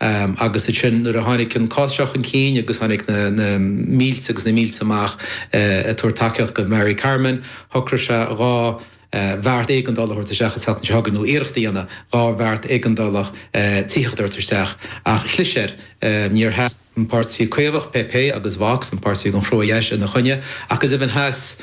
Agus ansin, nuair a tháinig an cás seo chun cinn agus tháinig na mílte agus na mílte amach ag tabhairt tacaíocht do Mari Carmen, shocraigh sé dhá bheart éigeandála a thabhairt isteach an tseachtain seo chugainn, nó iarracht a dhéanamh dhá bheart éigeandála tithíochta a thabhairt isteach, ach chlis air. Ní hamháin gur sheas an páirtí coimeádach, PP, agus Vox, an páirtí ar an gcrua-dheis, ina choinne, ach go deimhin sheas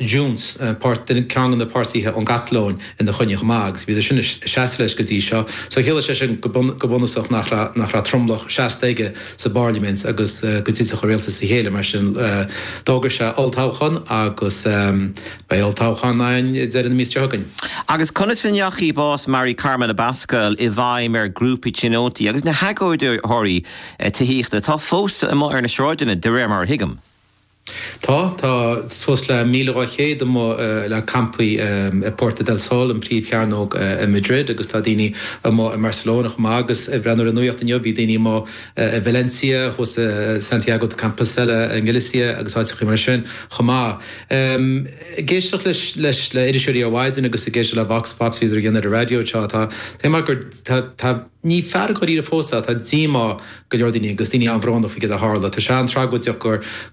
Junts, ceann de na páirtithe ón gCatalóin, ina choinne chomh maith agus bhíodar sin ag seasamh leis go dtí seo. So chiallaigh sé sin go bunúsach nach raibh nach raibh tromlach seasta aige sa bParlaimint agus go dtitfeadh a rialtas as a chéile mar sin d'fhógair sé olltoghchán agus beidh olltoghchán ann deireadh na míosa seo chugainn. Agus conas a chuaigh bás Mari Carmen Abascal i bhfeidhm ar ghrúpaí tionóntaí agus na hagóideoirí tithíochta atá fós amuigh ar na sráideanna, de réir mar a thuigim? Tá. Tá suas le 1,200 puball campáil i Puerta del Sol, an príomhchearnóg i Madrid, agus tá daoine amuigh i mBarcelona chomh maith agus, ar an nuacht inniu, bhí daoine amuigh i Valencia, thuas i Santiago de Compostela i nGalicia agus áiteachaí mar sin chomh maith. Ag éisteacht leis le hiriseoirí ó mhaidin agus ag éisteacht le vox pops a bhíodar a dhéanamh ar an raidió anseo, tá mé ag maíomh gur, tá, tá, Ní fearg dháiríre fós é, tá díomá ar go leor daoine agus daoine an-bhrónach faoi cad a tharla. Tá sé an-tragóideach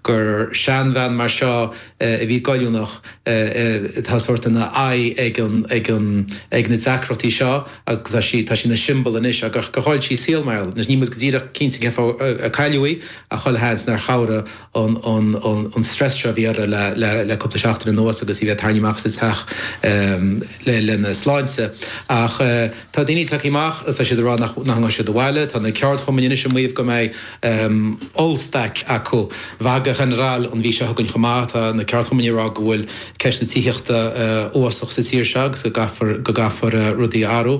gur seanbhean mar seo, a bhí goilliúnach, atá sórt ina haghaidh ag na deacrachtaí seo agus tá sí ina siombal anois, ach gur chaill sí a saol mar gheall air. Anois, níl muid go díreach cinnte cén fáth a cailleadh í, ach chuile sheans nár chabhraigh an strus seo a bhí uirthi le cúpla seachtain anuas agus í bheith ag tarraingt amach as a teach lena sláinte. Tá daoine tagtha amach agus tá siad ag rá nach ngabhfaidh siad abhaile. Tá na ceardchumainn anois ag maíomh go mbeidh ollstailc acu, huelga general, an mhí seo chugainn chomh maith. Tá na ceardchumainn ag rá go bhfuil ceist na tithíochta uafásach sa tír seo agus go gcaithfear rudaí a athrú.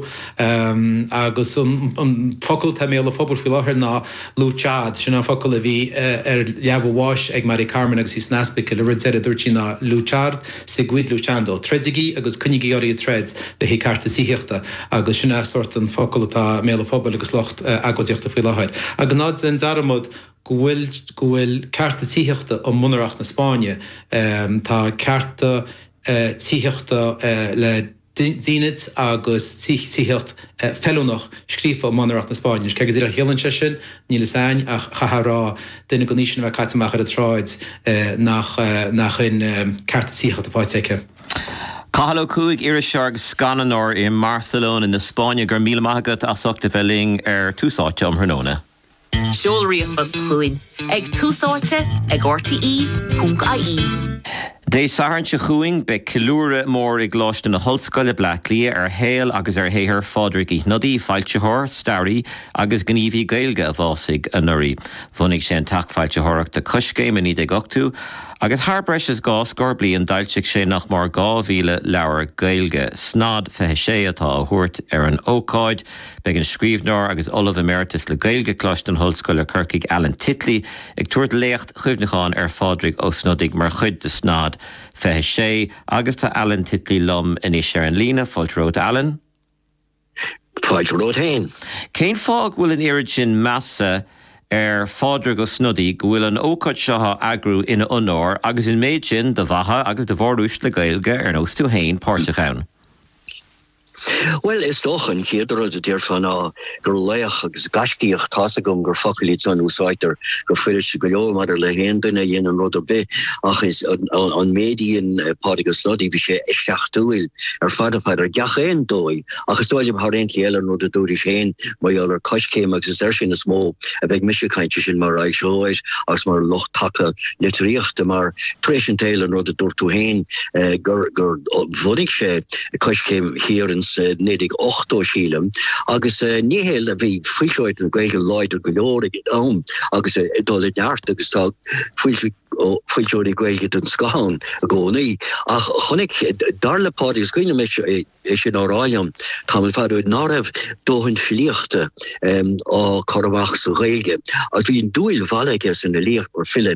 Agus an focal atá i mbéal an phobail faoi láthair ná luchad. Sin é an focal a bhí ar leaba bháis ag Mari Carmen agus í san ospaicil. An rud deiridh a dúirt sí ná luchad. Seguid luchando. Troidigí agus coinnigí oraibh ag troid le haghaidh cearta tithíochta, agus sin é sórt an focal atá i mbéal an phobail agus lucht agóidíochta faoi láthair. Agus ná déan dearmad go bhfuil go bhfuil cearta tithíochta i mbunreacht na Spáinne. Tá cearta tithíochta le. dínit agus tithíocht feiliúnach scríofa i mbunreacht na Spáinne. Cé go díreach a chiallaíonn sé sin, níl fhios a'ainn, ach chaithfeá a rá, duine den aois sin a bheith caite amach ar an tsráid, nach shin cearta tithíochta atá fáite aici. Cathal Ó Cuaig, Iriseoir agus Scannánóir i mBarcelona na Spáinne. Go raibh míle maith agat as ucht a bheith linn ar Tús Áite um thráthnóna. Seol ríomhphost chugainn ag, tús áite ag, rte.ie. Dé Sathairn seo chugainn beidh ceiliúradh mór i gColáiste na hOllscoile, Bleá Cliath ar shaol agus ar shaothar Phádraig Uí Shnodaigh, foilsitheoir, staraí agus gníomhaí Gaeilge a bhásaigh anuraidh. Bhunaigh sé an teach foilsitheoireachta Coiscéim i 1980 agus thar breis is dhá scór bliain d'fhoilsigh sé nach mór 2,000 leabhar Gaeilge. Snod 26 atá á thabhairt ar an ócáid. Beidh an scríbhneoir agus Ollamh Emeritus le Gaeilge Coláiste na hOllscoile Corcaigh Alan Titley ag tabhairt léacht chuimhneacháin ar Phádraig Ó Snodaigh mar chuid de Snod 26 agus tá Alan Titley liom anois ar an líne. Fáilte romhat, Alan. Fáilte romhat féin. Cén fáth go bhfuil an oiread sin measa ar Phádraig Ó Snodaigh go bhfuil an ócáid seo á eagrú ina onóir agus an méid sin de mhaithe agus de mhóruaisle Gaeilge ar nós tú féin páirteach ann? Bhuel, is dócha, an chéad rud a déarfá ná gur laoch agus gaiscíoch, tá a fhios agam, gur focail iad san a úsáidtear go fuiriste go leor maidir le haon duine a dhéanann rud ar bith, ach ins an méid a dhein Pádraig Ó Snodaigh, bhí sé eisceachtúil ar fad ar fad, ar gach aon dóigh, ach is dóigh liom thar aon chaoi eile an rud a dúraís féin mar gheall ar Coiscéim agus is air sin is mó a bheidh mise ag caint, sé sin mar fhoilsitheoir agus mar lucht taca litríochta mar tar éis an tsaoil an rud a dúirt tú féin gur bhunaigh sé Coiscéim thiar insa naoi déag ochtó, sílim, agus ní hé le bhí foilsitheoireacht na Gaeilge láidir go leor ag an am agus ag dul i neart agus tá foilsitheoirí Gaeilge den scoth ann i gcónaí ach chonaic, dar le Pádraig is cuimhin liom é sin á rá liom tamall fada ó shin, ná raibh dóthain filíochta á cur amach sa Ghaeilge agus bhí an dúil mhallaithe aige san fhilíocht mar file.